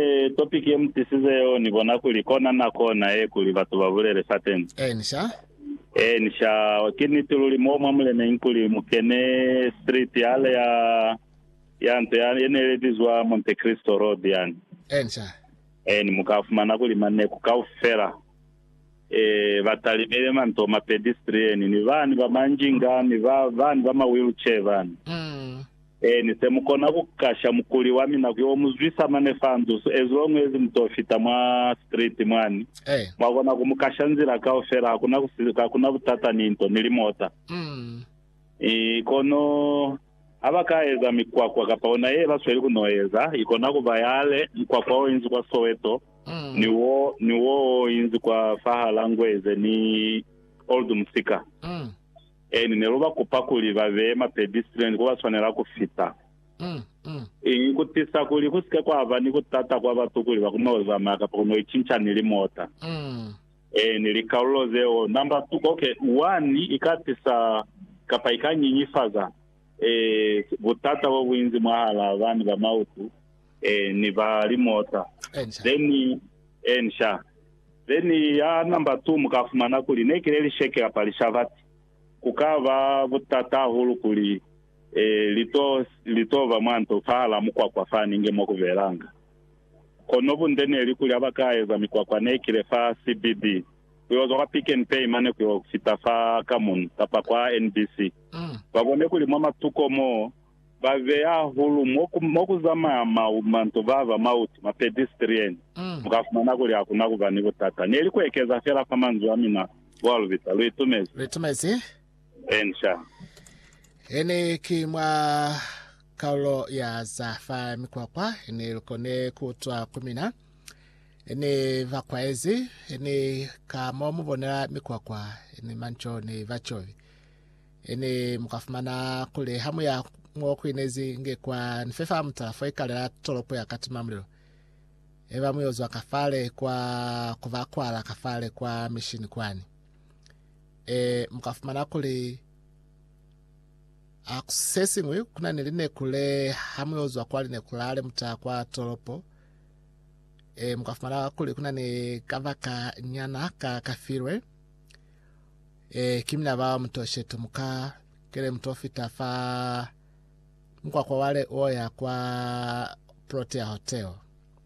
Ee, topiki ye mu tisize yoni bona kuli kona nako na ye kuli batu ba bulele Sateni. Eeni, sha. Eeni, sha. Ki niti luli. Mo mwa muleneñi kuli mu kene street yale ya, ya nto ya, ye ne ile bizwa Monte Cristo Road yani. Eeni, sha. Eeni, mu ka fumana kuli maneku kaufela. ee, ba talimile mantoma, pedestrian, ni bani ba manjinga, ni ba, bani ba ma wheelchair bani. Ee, ni se mu kona ku kasha mukuli wa mina ku yo mu zwisa mane fa nzusu, as long as mu to fita mwa street mwani, mwa kona ku mu kasha nzila kaufela, hakuna ku, hakuna butata ni nto, ni limota. Ee, kono Ha ba ka eza mikwakwa kapa ona ye ba sweli ku n'o eza, i kona ku ba yale, mukwakwa o inzi kwa Soweto, ni wo, ni wo o inzi kwa fahal'a Ngweze ni Old Musika. Eeni, ne lu ba kupa kuli ba beye mapedi silweni ku ba swanela ku fita. I ku tisa kuli ku si ke kwa ba ni ku tata kwa batu kuli ba ku n'o zamaya kapa ku n'o icinca ni limota. Ee, ni likalulo zeo. Namba tu, ok, wani ika tisa kapa ika nyinyifaza e, butata bo buinzi mwahala bani ba mautu e, ni ba limota. Ensha. Then, ensha. Then ya namba tu, muka fumana kuli nekile lisheke kapa lishabati. Kuka ba butata hahulu kuli e, lito, lito ba mwanto fahala mukwakwa fani nge mwa kubelanga. Kono bunde neli kuli haba ka eza mikwakwa ne kile fa CBD, kuyo zwa kwa Pick n Pay mane kuyo fita fa Kamun kapa kwa NBC, ba bone kuli mwa matuko mo ba beya hahulu mo ku zamaya manto baba mautu, ma pedestrian, mu ka fumana kuli hakuna kuba ni butata. Neli ku ekeza fela fa manzwi a mina, Boa Lubita. Lu itumezi. Lu itumezi. Inca. He ne ki mwa kaulo ya za fa mikwakwa, he ne lu kone ku utwa ku mina. He ne ba kwaezi, he ne ka mo mu bonela mikwakwa, he ne manco ne ba covi. He ne mu ka fumana kuli ha mu ya mo ku inezi nge kwa ni fe fa mutala fo ikalela tolopo ya katimamulilo, he ba mu yo zwa ka fale kwa ku ba kwala ka fale kwa mishini kwani. Ee, mu ka fumana kuli a ku si se siñwi, ku na ni lineku le ha mu yo zwa kwa lineku lale mu ta kwa tolopo. Ee, mu ka fumana kuli ku na ni kabaka nyana ka ka filwe. Ee, ki mina bao mu to sheto mu ka kele mu to fita fa mukwakwa wale o ya kwa Protea Hotel.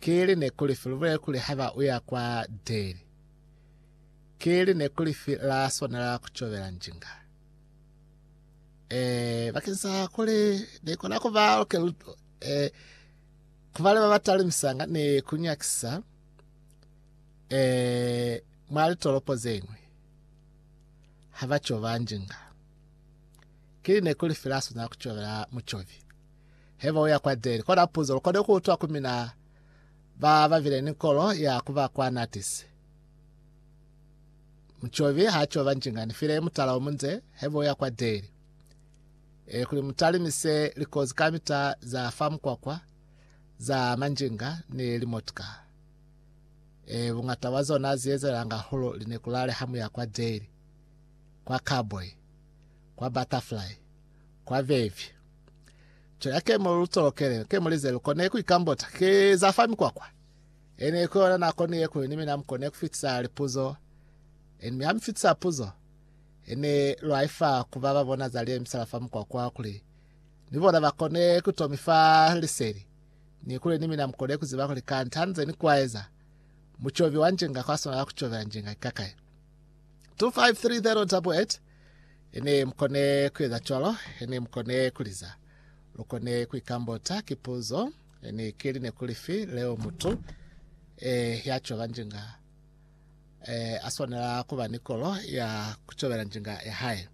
Keli neku lifi lubulele kuli haba uya kwa Deli? Keli neku lifi la swanela kucobela njinga? Eh, bakeng sa kuli nikona kuba luke luto, eh, kubale babatali misanga ni kunyakisa, eh, mwa litolopo zeñwi, haba coba njinga. Keli neku lifi la swanela kucobela mucobi? Heba uya kwa Deli. Kola puzo, lukone kuutwa ku mina ba babile ni kolo ya kuba kwa natisi. Mucobi ha coba njinga, ni file mutala omunze, heba uya kwa Deli. E, kuli mutalimise likozi kamita za fa mukwakwa, za manjinga, ni limotka. E, bungata bwa zona ziezelanga hulu linekulale ha muya kwa Deli, kwa Cowboy, kwa Butterfly, kwa Vevy. Cela kemo lu tsolokele, kemo lize lu kone ku ikambota, ke za fa mikwakwa. Ene ku yona nako ni yekulu ni mina mu kone ku fitisa lipuzo. Ene mi ha mi fitisa puzo, ene lwa ifa ku ba ba bona za liye misala fa mikwakwa kuli ni bona ba kone ku to mi fa liseli, ni kuli ni mina mu kone ku ziba kuli kanti ha nze ni kwaeza, mucobi wa njinga kwa swanela ku cobela njinga ikakaye. 253088 ne mukone kueza cwalo ne mukone kuliza lukone kuikambota kipuzo ne kili ne kulifi leo mutu eh, ya coba njinga eh, aswanela kuba ni kolo ya kucobela njinga ya hae